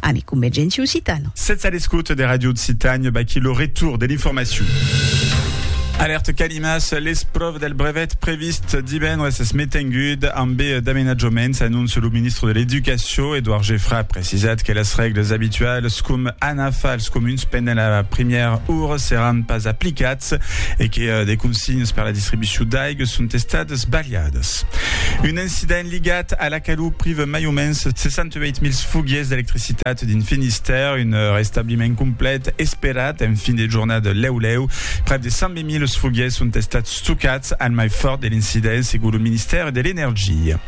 Ami Convergenti Occitano. Sètz a l'escota de Ràdio Occitània, vaquí lo retour de l'informacion. Alèrta Calimas, l'espròva del brevet previst divendres es metenguda ambe d'amenatjaments, anóncia lo ministre de l'Educacion, Edouard Geffra a precisat que las règles abitualas com anar far als comuns pendent la primièra ora seràn pas aplicats e que de consignas per la distribucion d'aiga son estadas balhadas. S'incident ligat a la calor prive mai o mens 68.000 foguiers d'electricitat dins Finistère. Un restabliment complet esperat en fin de jornada. Lèu lèu, prèp de 120.000 foguiers son estats stocats al mai fòrt de l'incident, segon lo Ministèri de l'Energia.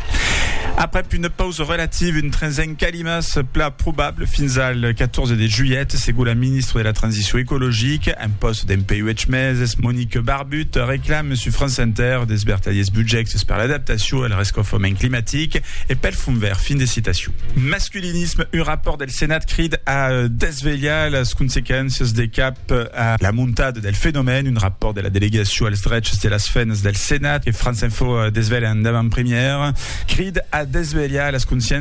Aprèp una pausa relativa, un tresen calima se pla probable fins al 14 de julhet, segon la ministra de la Transicion ecologica en pòst dempuèi uèch meses, Monique Barbier. But, reclame sus France Inter des vertadiers budjèctes per l'adaptacion e el rescaufament climatic e pel Fond Verd. Fin de citacion. Masculinisme, un rapòrt del Senat crid a desvelhar las consequéncias de cap a la montada del fenomèn. Un rapòrt de la Delegacion als drechs de las femnas del Senat que France Info desvelha en davant-premièra crid a desvelhar las consciéncias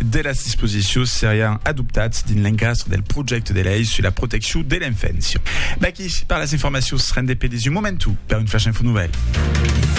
de las disposicions serián adoptats dins l'encastre del projècte de lei sus la proteccion de l'enfància. V'aquí per las informacions rendepedis un momentu per un Flash Info Nouvelle.